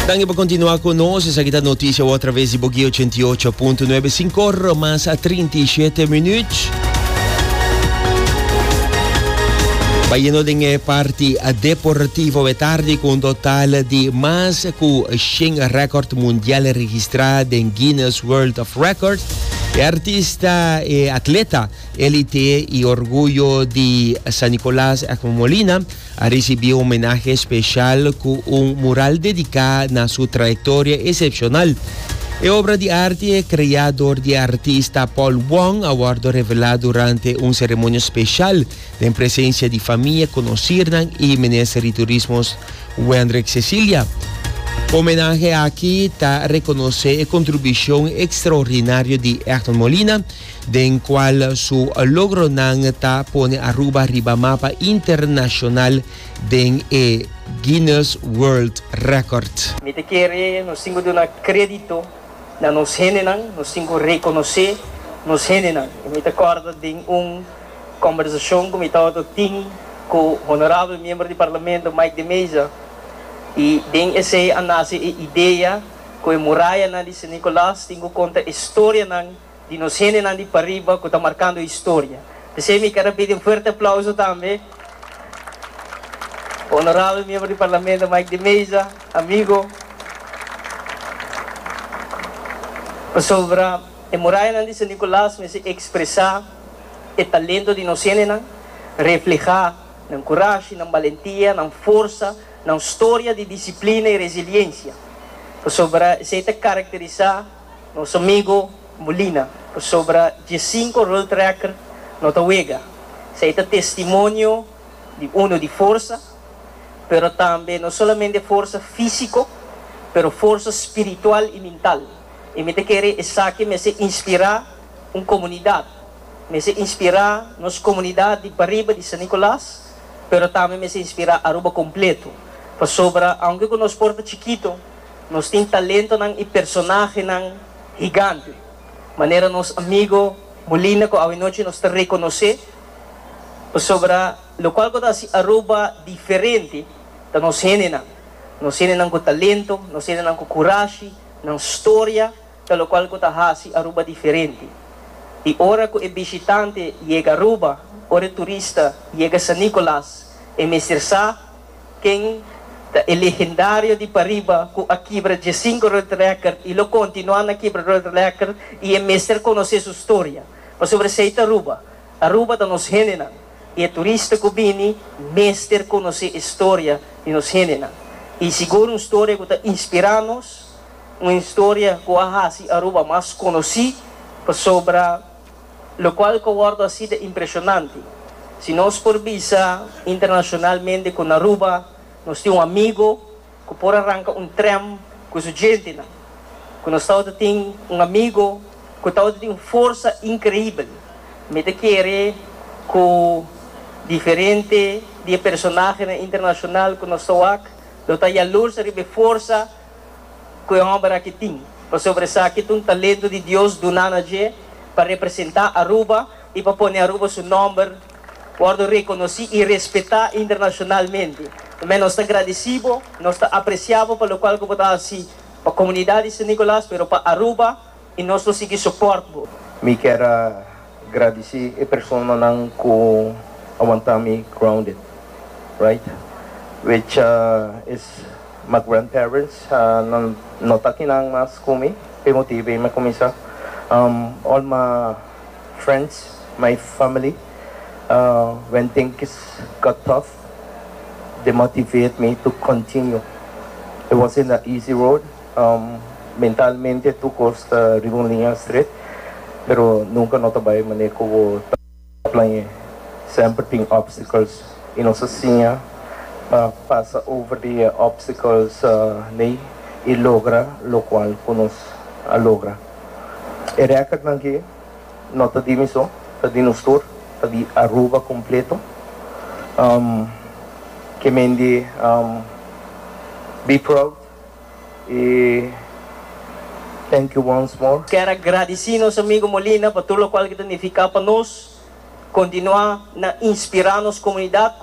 Danki pa kontinua ku nos. Esaki ta Notisia Wou através di Bogey 88.9, sinkor mas a trinta i shete minüt. Bayendo den e parti deportivo e tardi ku un total di mas ku shen rekòrd mundial registrá den Guinness World of Records. E artista, e atleta, elite i orguyo di San Nicolas, Ekman Molina, a risibí un homenahe spesial ku un mural dediká na su trayektoria esepshonal. E obra di arti e kreá dor di e artista Paul Wong a wòrdu revelá durante un seremonia spesial den presensia di famia, konosirnan i minister di Turismo Wendrick Cecilia. Homenahe aki ta rekonosé e kontribishon ekstraordinario di Egmond Molina, den cual su logronan ta pone Aruba riba mapa internacional den e Guinness World Record. Mi ta kere nos tin cu duna credito na nos hendenan, nos tin cu reconoce nos hendenan. Y mi ta corda den un conversacion cu mi tabatin tin cu Honorabel Miembro di Parlamento Mike de Meza, y den esey a nace e idea cu e murayanan di San Nicolas tin cu conta e storianan, di nos hendenan di pariba cu ta marcando historia. P'esei mi ker a pidi un fuerte aplauso tambe pa Honorabel Miembro di Parlamento Mike de Meza, amigo, pasobra e murayanan di San Nicolas mester expresa e talento di nos hendenan, refleha nan curashi, nan balentia, nan forsa, nan storia di disciplina y resiliencia, pasobra esei ta caracterisa. Nos amigo Molina pasobra dje sinku roltrekker no ta wega. Esei ta testimonio di uno di forsa, pero tambe no solamente forsa físiko, pero forsa spiritual i mintal. I mi ta kere esaki mester inspirá un komunidat, mester inspirá nos komunidat di pariba di San Nikolas, pero tambe mester inspirá Aruba kompletu, pasobra aunke ku nos por ta chikito, Nos tin talentonan i personahenan higante, manera nos amigu Molina ku awanochi nos ta rekonosé. Pasobra lokual ku ta hasi Aruba diferente ta nos hendenan, nos hendenan ku talento, nos hendenan ku kurashi, nan storia ta lokual ku ta hasi Aruba diferente. I ora ku e bishitante yega Aruba, ora e turista yega San Nicolas, e mester sa, Ken ta e legendario di pariba cu a kibra diescinco road record y lo continua na kibra road record y e mester conoce su storia pasobra esey ta Aruba. Aruba ta nos hendenan y e turista cu bini mester conoce e storia di nos hendenan y sigur un storia cu ta inspira nos, un historia cu a haci Aruba mas conoci pasobra. Locual cu a wordo así ta impresionante. Si nos por bisa internacionalmente cu na Aruba nos tin un amigo cu por a ranca un tren cu su gentenan, cu nos tabata tin un amigo cu tabata tin un forsa increibel, mi ta kere cu diferente di e personahenan internacional cu nos ta wak lo ta yalursa riba e forsa ku e hòmber aki tin, pasobra esaki ta un talentu di Dios duna na dje pa representá Aruba i pa pone Aruba su nòmber wòrdu rekonosí i respetá internashonalmente. Tambe nos ta gradesí bo, nos ta apresiá bo pa lokual ku bo ta hasi pa komunidat di San Nikolas, pero pa Aruba I nos lo sigui support bo. Mi kier a gradisi e personanan ku a wanta mi grounded right which is my grandparents nan no ta kinan mas ku mi p'e motibu ei mi a kuminsá all my friends my family when things got tough they motivate me to continue it wasn't a easy road. Mentalmente tur cos ta riba un liña stret, pero nunca no ta bay mané cu bo ta plañe. Semper tin obstacles y nos a siña pa pasa over di e obstacles ley y logra locual cu nos a logra. E recordnan aki no ta di mi so, ta di nos tur, ta di Aruba completo. Ke mende be proud. y thank you once more. Kier a gradisi nos amigo Molina pa tur lokual ke ta nifiká pa nos, kontinuá na inspirá nos komunidat,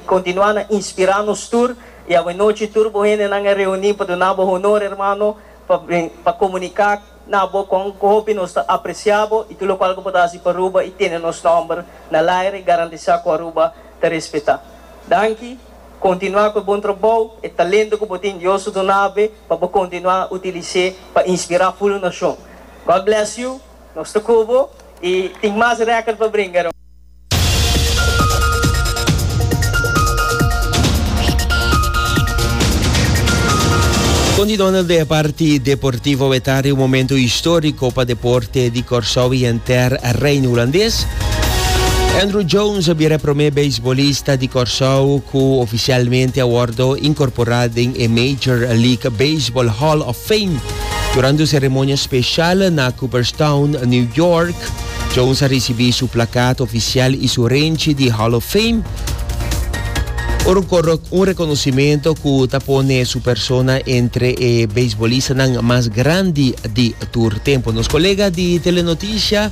kontinuá na inspirá nos tur y awe nochi tur bo hendenan a reuní pa duna bo honor hermano pa pa komuniká na bo kon hopi nos ta apresiá bo y tur lokual ke bo ta hasi pa Aruba y tene nos nòmber na laire garantisá ku Aruba ta respetá. Danki. Kontinuá ku e bon trabou, e talento ku bo tin Dios a duna bo pa bo kontinuá utilis'é pa inspirá full un nashon. God bless you, nos ta ku bo i tin mas rèkòrd pa bringa. Con di Donald de e parti Deportivo Wetari un momento historico pa deporte di Corsou y henter Reino Hulandes. Andruw Jones a bira e promé beisbolista di Kòrsou ku ofisialmente a wòrdu inkorporá den e Major League Baseball Hall of Fame. Durante un seremonia spesial na Cooperstown, New York, Jones a risibí su plakat ofisial i su renchi di Hall of Fame, un rekonosimentu ku ta pone su persona entre e beisbolistanan mas grandi di tur tempu. Nos kolega di Telenotisia,